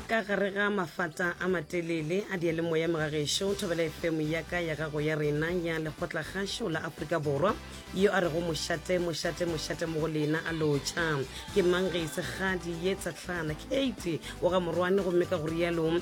ka gare ga mafata a matelele a diyalemoya megagešo thobela efemo ya ka ya gago ya rena ya lekgotla gašo la aforika borwa yo a rego mošate mošate mošate mo go lena a lotšha ke mang ge e se kgadi ye tsatlhana kate o ga morwane gomme ka go rialo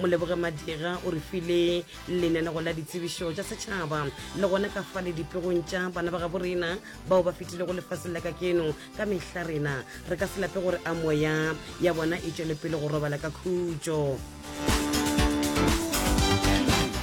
Moleboge Madira o re file lenanego la ditsebišo tša setšhaba le gona ka fa le dipegong tša bana ba gabo rena bao ba fetilego lefaseng la ka keno ka mehla rena re ka se lape gore a moya ya bona e tšwele pele go robala ka khutšo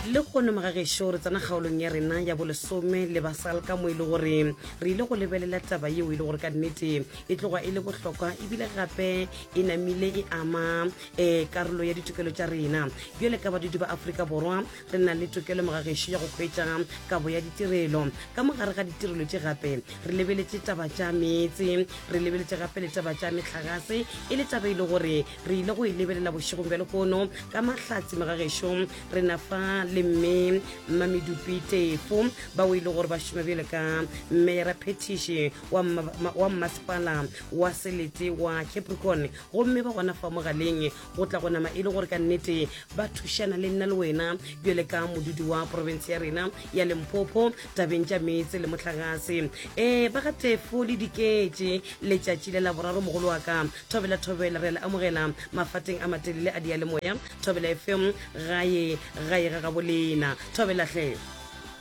le kgono magagešo re tsena kgaolong ya rena ya bolesome le basal ka mo e le gore re ile go lebelela taba yeo e le gore ka nnete e tloga e le bohlokwa ebile gape e namile e ama e karolo ya ditokelo tša rena bjale ka badudi ba aforika borwa re na le tokelo mogagešo ya go hwetša kabo ya ditirelo ka mogare ga ditirelo tše gape re lebeletše taba tša meetse re lebeletše gape le taba tša metlagase e le taba e le gore re ile go e lebelela bošegong bja lekono ka mahlatsi mogagešo re na fa le mme mmamedupi tefo bao e le gore ba šoma bjale ka mmeyara phetiše wa mmasepala wa selete wa capricorn Gomme ba gona fa mogaleng, go tla go nama e le gore ka nnete ba thušana le nna le wena, bjale ka modudi wa profense ya rena ya Limpopo, tabeng tša meetse le mohlagase. Ee, ba ga Tefo le Diketše, letšatši le la boraro, mogolo wa ka. Thobela, thobela, re a le amogela mafateng a matelele a diyalemoya. Thobela FM, gae, gae ga gabo lena. Thobela hle.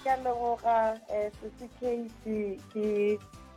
Ke a leboga, eh, Sisi Casey, ke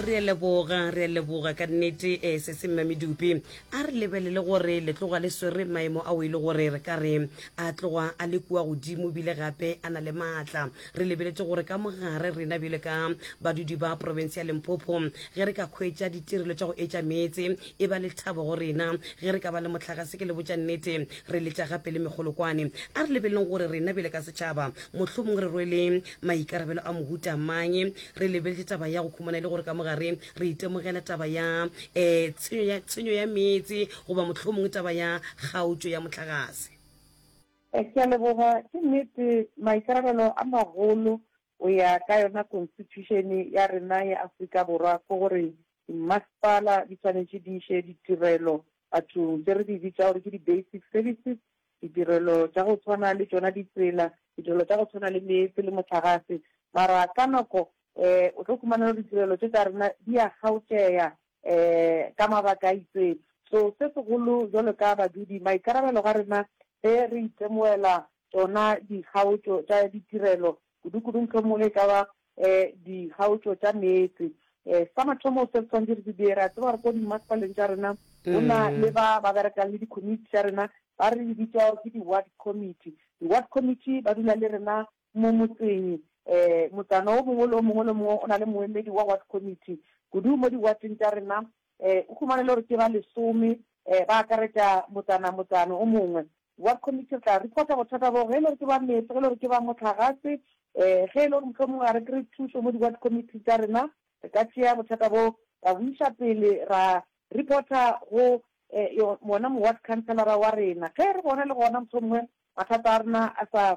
re a leboga re a leboga ka nnete um eh, sese mme medupi a re lebelele gore le tloga le swere maemo ao e le gore re ka re a tloga a le kua godimo bile gape a na le maatla re lebeletse gore ka mogare rena bjale ka badudi ba province ya limpopo ge re ka kgwetša ditirelo tša go etša meetse e ba le thabo go rena ge re ka ba le motlagase ke le botša nnete re letša gape le megolokwane a re lebeleleng gore rena bjale ka setšhaba mohlomong re rwele maikarabelo a mohuta mang re lebeletše taba ya go khumana e le gore ka mogare re itemogela taba ya um tshenyo ya meetse goba mohlomongwe taba ya kgaotšo ya motlagase eh, ke a leboga ke nnete maikarabelo a magolo o ya ka yona constitution ya rena ya Afrika Borwa ke gore masepala di tshwanetse di iše ditirelo Batho tše re di bitša gore ke di-basic services, ditirelo tša go tshwana le tšona ditsela, ditirelo tša go tshwana le meetse le mohlagase, mara ka nako um o tlo khumana gore ditirelo tše tša rena di a kgaotšea um ka mabaka a itseng. So se segolo jwalo ka badudi, maikarabelo ga rena ge re itemogela tšona dikgaotšo tša ditirelo Kudu-kudu mohlomongwe e ka ba dikgaotšo tša meetse. Sa mathomo se re swanetše re se dire, re a tseba gore ko dimmasepaleng tša rena go na le ba ba berekang le dikomiti tša rena, ba re bitša gore ke di-ward committee. Di-ward committee ba dula le rena mo motseng, motsana o mongwe le o mongwe le o mongwe o na le moemedi wa ward committee. Kudu mo di-ward-ing tša rena O humane le gore ke ba lesome, ba akaretša motsana motsana o mongwe. Ward committee re tla reporta bothata boo, ge e le gore ke ba meetse, ge e le gore ke ba mohlagase, ge e le gore mohlomongwe ga re kry-e thušo mo di-ward committee tša rena, re ka tšea bothata boo ra bo iša pele ra reporta go wona mo-ward councilor-ra wa rena. Ge re bona le gona mohlomongwe mathata a rena a sa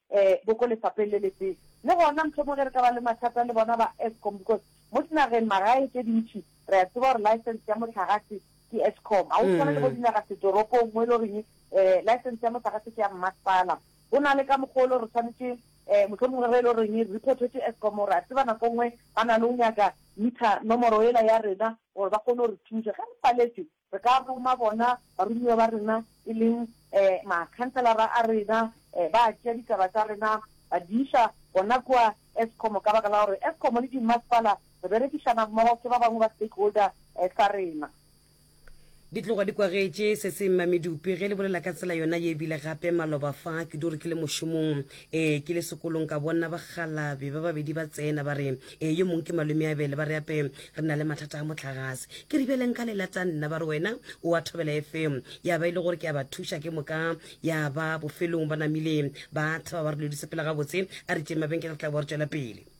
e bo ko lefapheng le le tee. Le gona mohlomongwe ge re ka ba le mathata le bona ba Eskom because mo dinageng magae tše dintši re a tseba gore license ya mohlagase ke Eskom. Ga go tshwane le bo dinaga setoropong mo e le goreng e license ya mohlagase ke ya mmasepala. Go na le ka mokgwa o le gore re tshwanetše e mohlomongwe ge e le goreng re reportwetše Eskom re a tseba nako e nngwe ba na le go nyaka meter nomoro yela ya rena gore ba kgone go re thuša ge re paletšwe. Re ka roma bona baromiwa ba rena, e leng makhanselara a rena, ba tšea ditaba tša rena ba di iša gona kua Eskom ka baka la gore Eskom le dimmasepala re berekišana mmogo, ke ba bangwe ba stakeholder sa rena. Di tloga di kwagetše se se mmamedupi ge le bolela ka tsela yona ye ebile gape maloba fa kudu re ke le mošomong. ee ke le sekolong ka bonna bagalabi ba babedi ba tsena ba re ee yo mongwe ke malome a bele ba re ape re na le mathata a motlagase ke re bjale nka lela tsa nna ba re wena o a thobela efeng ya ba e le gore ke a ba thuša ke moka ya ba bofelong ba namile ba thaba ba re lodise pela gabotse a re tšeng mabenkele re tla bo re tswela pele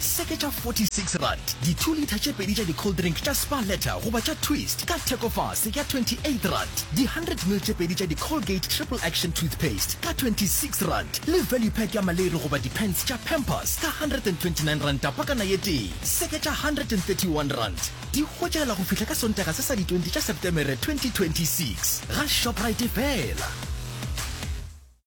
Se ke tša 46 rand, di two litre tše pedi tša di cold drink tša Spar Letter goba tša Twist ka theko fase ya 28 rand, di 100 ml tše pedi tša di Colgate Triple Action Toothpaste ka 26 rand le value pack ya maleri goba di pants tša Pampers ka 129 ranta pakana ye tee. Se ke tša 131 rand, di hwetšagala go fihla ka Sontaga se sa di 20 tša Septemere 2026 ga Shoprite fela.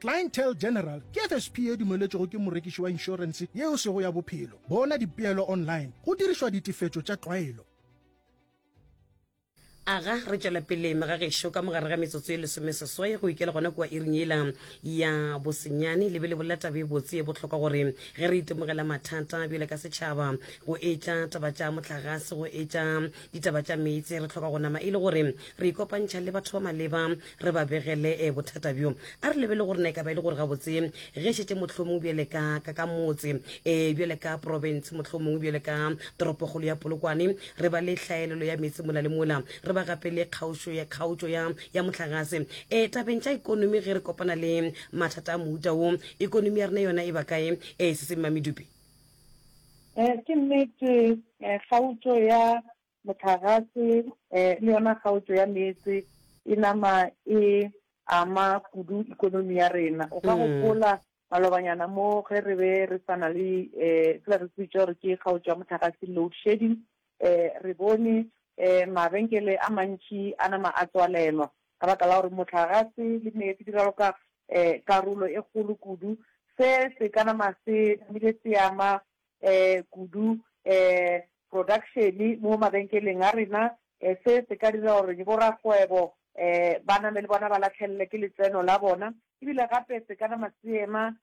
Clientele General ke FSP e dumeletšwego ke morekiši wa inšorense yeo sego ya bophelo. Bona dipeelo online go dirišwa ditefetšo tša tlwaelo. Aga re tšwela pele mega gešo ka mogare ga metsotso ye lesome seswai go ikela gona kua iring yela ya bosenyane le be le bolela taba e botse e bohlokwa gore ge re itemogela mathata bjale ka setšhaba go etša taba tša mohlagase go etša ditaba tša meetse re tlhoka go nama e le gore re ikopantšha le batho ba maleba re ba begele eh, bothata bjo a re lebele gore na e ka ba e le gore gabotse ge šetse mohlomongwe bjale ka ka ka motse um bjale ka province mohlomongwe bjale ka toropogolo ya polokwane re ba le hlaelelo ya metse mola le mola re ba gape le kgaotšo ya kgaotšo ya ya motlagase um tabeng tša ikonomi ge re kopana le mathata a mohuta wo ikonomi ya rena yona e ba kae um se se mmamedupe um ke nnete um kgaotšo ya mohlagase le yona kgaotšo ya meetse e nama e ama kudu ikonomi ya rena. O ka gopola malobanyana mo ge re be re sa na le sela re se bitša gore ke kgaotšo ya mohlagase, load shedding, re bone mabenkele a mantši a nama a tswalelwa ka baka la gore mohlagase le meetse di raloka karolo e kgolo kudu. Se se ka nama se namile se ama kudu production mo mabenkeleng a rena. Se se ka dira gore borakgwebo ba name le bona ba latlhelelwe ke letseno la bona e bile gape se ka nama seema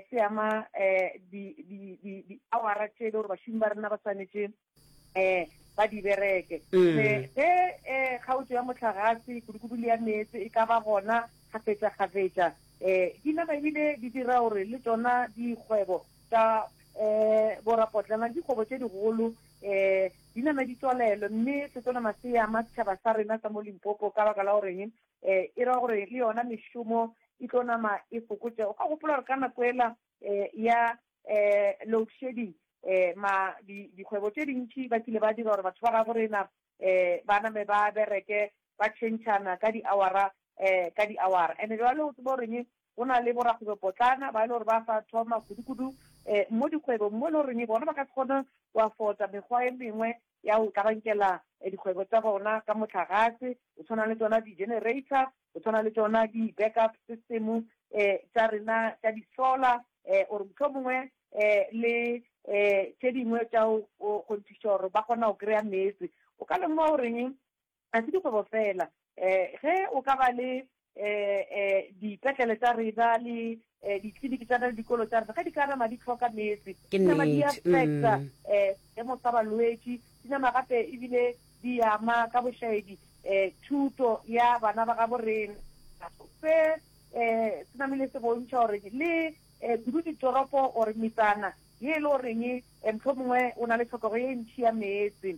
se ama di-hour-a tše e le gore bašomi ba rena ba swanetše ba di bereke. Ge kgaotšo ya mohlagase, kudu-kudu le ya meetse e ka ba gona kgafetša-kgafetša, di nama e bile di dira gore le tšona dikgwebo Ka e, borapotlana ke dikgobo tše digolo, e, di nama di tswalelwe, mme setonama se ama setšhaba sa rena sa mo Limpopo ka baka la goreng e e ra gore le yona mešomo e tlo nama e fokotšego. Ga gopola gore ka nako ela e, ya e, load shedding e, ma, di, dikgwebo tše dintši ba kile ba dira gore batho ba gabo rena e, ba name ba bereke ba tšhentšhana ka diawara e, ka diawara. Ene jwale o tseba goreng Go na le borakgwebopotlana ba e le gore ba sa thoma kudu-kudu um mo dikgwebong mo e le goreng bona ba ka se kgone go afota mekgwa e mengwe ya go kabankela dikgwebo tsa bona ka motlagase, go tshwana le tsona di-generator, go tshwana le tsona di-backup system um tsa rena tsa di-solar um or mohlomongwe um le um tše dingwe tša go kgonthiša gore ba kgona go kry-a meetse. O ka lemoga goreng Ga se dikgwebo fela. Um ge o ka ba le um um dipetlele tša rena le um ditliniki tša rena le dikolo tša rena, ge di ka nama di hloka meetse, Ke di nama di nnete, affecta mm. um seemo sa balwetši, di nama gape ebile di ama ka bošaedi um thuto ya bana ba gabo rena. Se um se namile se bontšha gore le um kudu ditoropo or metsana ye e le goreng um mohlomongwe o na le tlhokego ye ntšhi ya meetse,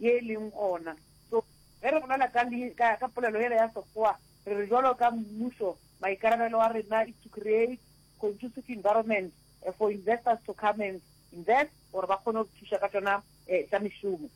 ye e leng gona. So, ge re bolela ka, ka, ka polelo yela ya Sekgowa, re re bjalo ka mmušo, maikarabelo a rena is to create conducive environment for investors to come and invest, gore ba kgone go re thuša ka tšona um tša mešomo.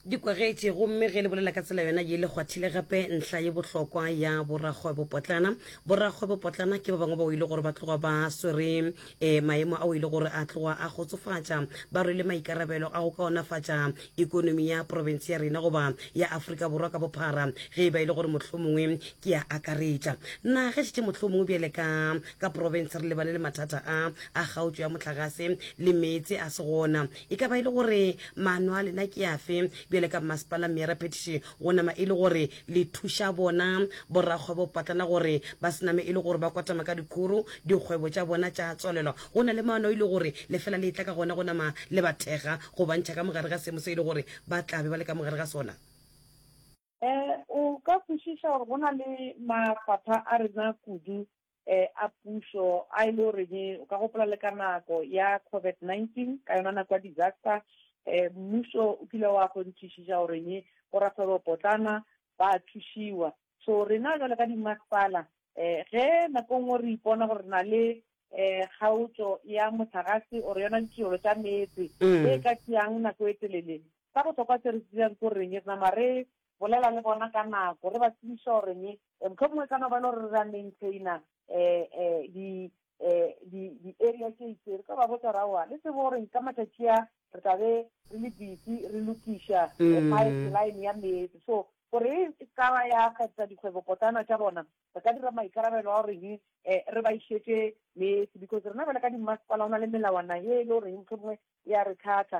Dikwagetše. Gomme ge le bolela ka tsela yona ye, le kgwathile gape ntlha ye bohlokwa ya borakgwebopotlana. Borakgwebopotlana ke ba bangwe bao e le gore ba tloga ba swere E, maemo ao e le gore a tloga a kgotsofatša ba rwele maikarabelo a go kaonafatša ekonomi ya profense ya rena goba ya Afrika Borwa ka bophara ge e ba e le gore mohlomongwe ke a akaretša na ge šetše mohlomongwe bjale ka ka profense re lebane le mathata a a kgaotšo ya mohlagase le meetse a se gona e ka ba e le gore maano a lena ke afe bjale ka mmasepala mme ya raphetiše go nama e le gore le thuša bona borakgwebopotlana gore ba se name e le gore ba kwatama ka dikgoro, dikgwebo tša bona tša tswalelwa go na le maano e le gore lefela le etla ka gona go nama le ba thekga go ba ntšha ka mogare ga seemo se e le gore ba tla be ba le ka mogare ga sona. E, o ka kwešiša gore go na le mafapha a rena kudu eh, a pušo a e le goreng o ka gopola le ka nako ya COVID-19 ka yona nako ya disaster eh, mmušo o kile wa kgonthišiša goreng borakgwebo potlana ba thušiwa so rena jale ka dimasepala um ge nako e nngwe re ipona gore na le um kgaotšo ya motlagase ore yona ditirelo tša meetse mm. e ka tšeang nako e telele sa bohlokwa se re tsebjang ko reng re nama re bolela le bona ka nako, re ba tsebiše gore ne, mohlomongwe e ka no ba e le gore re a maintainer di, di, di-area tše itseng, re tlo ba botša gore aowa, le tsebe gore ka matšatši a, re tla be re le busy re lokiša pipeline ya meetse. So gore e se ka ba ya kgahliša dikgwebopotlana tša bona, re ka dira maikarabelo a gore re ba išetše meetse, because rena bjale ka dimmasepala go na le melawana ye e le goreng mohlomongwe e a re thatha,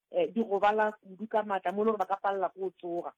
um di gobala kudu ka maatla mo e le gore ba ka palela ko tsoga.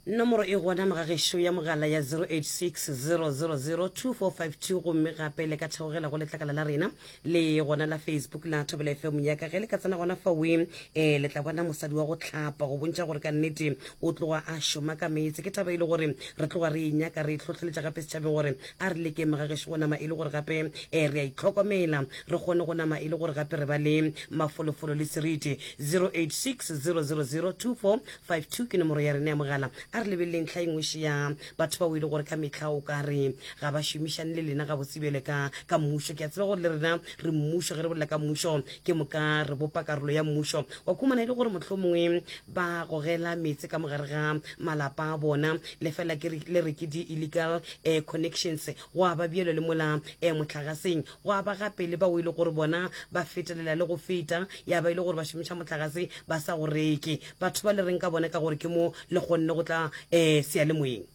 Nomoro e gona mo ga gešo ya mogala ya 086 000 2452 gomme gape le ka theogela go letlakala la rena le gona la Facebook la Thobela FM ya ka ge le ka tsena gona faweng eh le tla bona mosadi wa go tlhapa go bontša gore ka nnete o tloga a šoma ka meetse ke taba e le gore re tloga re e nyaka re e tlhotlheletša gape setšhabeng gore A re lekeng ga gešo go nama e le gore gape eh, re a itlhokomela, re kgone go nama e le gore gape re ba le mafolofolo le seriti. 086 000 2452 ke nomoro ya rena ya mogala. A re lebeleleng tlha engwe še ya batho bao e le gore ka mehla o ka re ga ba šomišane le lena gabotse bjale ka ka mmušo. Ke a tseba gore le rena re mmušo, ge re bolela ka mmušo ke moka re bopa karolo ya mmušo. Wa khumana e le gore mohlomongwe ba gogela meetse ka mogare ga malapa a bona lefela ke le re ke di-illegal um connections go a ba bjelo le mola um mohlagaseng go a ba gape le bao e le gore bona ba fetelela le go feta ya ba e le gore ba šomiša mohlagase ba sa go reke batho ba le reng ka bona ka gore ke mo le kgonne go tla um sealemoyeng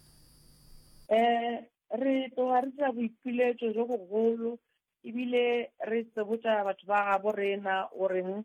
um re tloga re dira boipiletšo jo bogolo ebile re tsebotša batho ba gabo rena o reng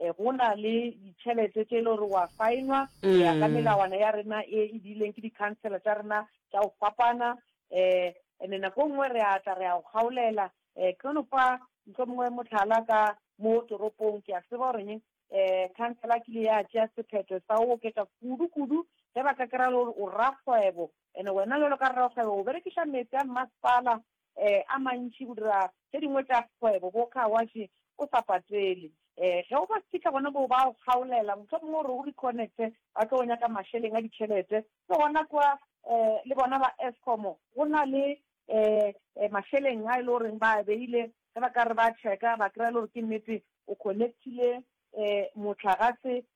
Eh, go na le ditšhelete tše e le gore wa faenwa go ya ka mm. melawana ya rena e e diileng ke di-councela tša rena tša go fapana um ande nako nngwe re a tla re a go kgaolela um eh, ke no fa ntlo mongwe motlhala ka mo toropong ke a seba goreng um eh, councela kile ya tšea sephetho sa o oketsa kudu-kudu ge ba ka kry-a le gore o rakgwebo and-e wena le lo ka rrakgwebo o berekiša metsi a mmasepala a mantši go dira tše dingwe tša kgwebo, bo car wash, o sa patele. Ge o ba fihla gona moo, ba go kgaolela, mohlomongwe o re o reconnecte, ba tlo go nyaka mašeleng a ditšhelete. Ke gona kwa le bona ba Eskom go na le mašeleng a e le goreng ba a beile, ge ba ka re ba check-a, ba kry-a e le gore ke nnete o connect-ile mohlagase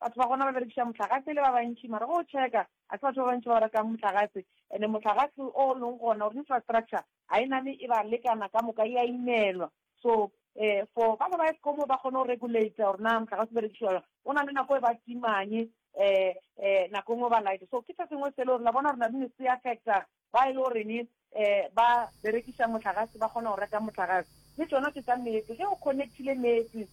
Batho ba gona ba berekiša mohlagase e le ba bantši, mara ge o tšheka, ga se batho ba bantši ba o rekang mohlagase. Ene mohlagase o o leng gona, or infrastructure, ga e name e ba lekana ka moka, e a imelwa. So, um for ba ba ba Eskom gore ba kgone go regulator gore na mohlagase o berekišiwa jwang, go na le nako e ba timang, um um nako e nngwe ba lighter. So ke se sengwe se e le gore la bona gore na di ne se affecta ba e lego reng um ba berekiša mohlagase ba kgona go reka mohlagase le tšona ke tša meetse ge o connectile meetse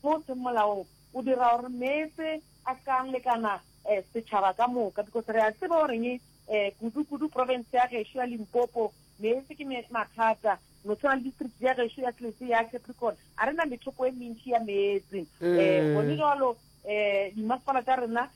mo o seng molaong o dira gore meetse a se ka a lekana um setšhaba ka moka because re a tseba o reng um kudu kudu province ya gešo ya limpopo meetse ke mathata no tshwana le district ya gešo ya tlese ya capricorn a re na methoko e mentši ya meetse um gone jalo um dimasepala tša rena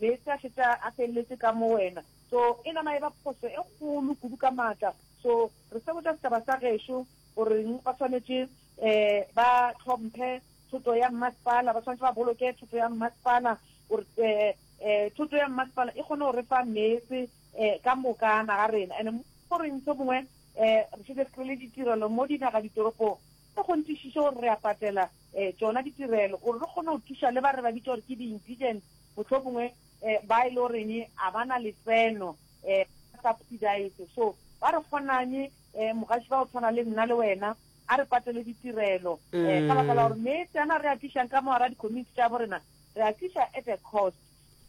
Meetse a šetša a feleletše ka mo wena. So, e nama e ba phošo e kgolo kudu ka maatla. So, re se botša setšhaba sa gešo goreng ba swanetše ba hlomphe thoto ya mmasepala, ba swanetše ba boloke thoto ya mmasepala gore thoto ya mmasepala e kgone go re fa meetse ka moka naga rena. And goreng se mongwe re šetše re kry-ile ditirelo mo dinaga ditoropong, e kgonthišiše gore re a patela tšona ditirelo gore re kgone go thuša le ba re ba bitša gore ke di-indigent. mohlomongwe ba e le goreng a ba na letseno ba subsidized. So ba re kgonang mogaši ba go tshwana le nna le wena a re patele ditirelo ka baka la gore metse ana re a tlišang ka mogara di-community tša borena re a tliša at a cost.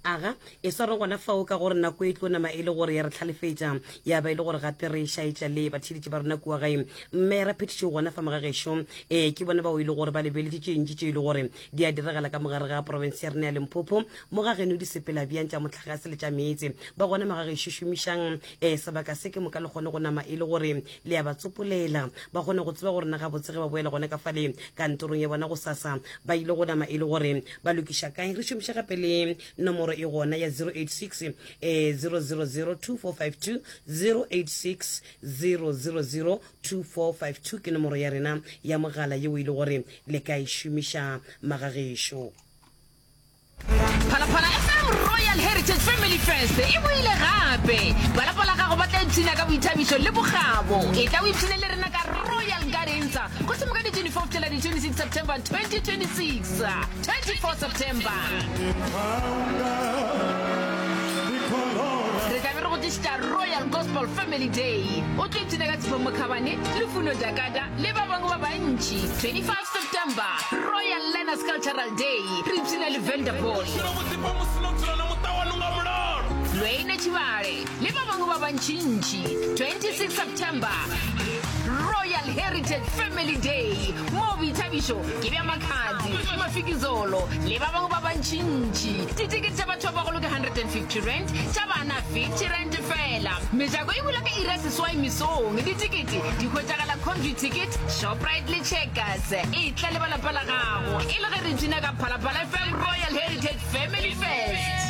Aga, e sware gona fao ka gore nako e tlo nama e le gore ya re tlhalefetša ya ba e le gore gape re šaetša le batheeletši ba rena kua gae. Mme Raphetiši o gona fa mogagešo, ee, ke bona bao e le gore ba lebeletše tše ntši tše e le gore Di a diragala ka mogare ga porofense ya rena ya Limpopo, mo ga geno di sepela bjang tša mohlagase le tša meetse. Ba gona mo ga gešo šomišang eh, sebaka se ke moka le kgone go nama e le gore le ya ba tsopolela. Ba kgone go tseba go rena gabotse ge ba boela gona ka fale kantorong ya bona gosasa. Ba ile go nama e le gore ba lokiša kae. Re šomiša gape le nomoro e gona ya 086 eh, 000 2452, 086 000 2452 ke nomoro ya rena ya mogala yeo e le gore le ka e šomiša magagešo. Phalaphala FM Royal Heritage Family Fest e boile gape. Ba lapa la gago ba tla ipshina ka boithabišo le bokgabo. E tla o ipshine le rena ka Royal Gardens, Kgošimokadi 24 go fihlela di 26 September 2026. 24 September Re tla be re go tlišitša Royal Gospel Family Day O tlo ipshina ka Tshifo Mokhabane, Lufuno Jakata le ba bangwe ba bantši 25 September Royal Learners Cultural Day Re ipshina le Vendor Boy Lweine Tshibale. le ba bangwe ba bantšintši 26 september royal heritage family day moo boithabišo ke bja makgadi mafikizolo le ba bangwe ba bantšintši ditikete tša batho ba bagolo ke 150 rand tša bana 50 rand fela mejako e bula ka ira seswai mesong ditikete di hwetšagala convy ticket shoprite le checkers e tla le ba lapa la gago e le ge re tsina ka phalaphala fm royal heritage family fest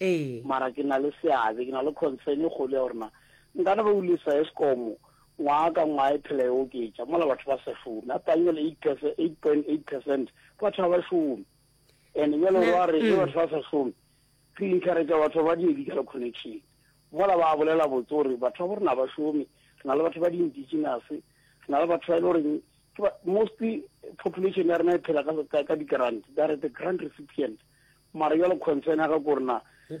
Ee. Mara ke na le seabe, ke na le concern e kgolo ya gore na nkana ba ulisa Eskom ngwaga ka ngwaga e phela e oketša mola batho ba sa šome. A pangele 8 percent, 8.8 percent, batho ga ba šome. And bjale o ba re ge batho ba sa šome, re encourage batho ba di-medical connection. Mola ba bolela botse gore batho ba bo rena ga ba šome, re na le batho ba di-indigenous, re na le batho ba e le goreng mostly population ya rena e phela ka di-grant that the grant recipient mara jalo concern ya ka ko rena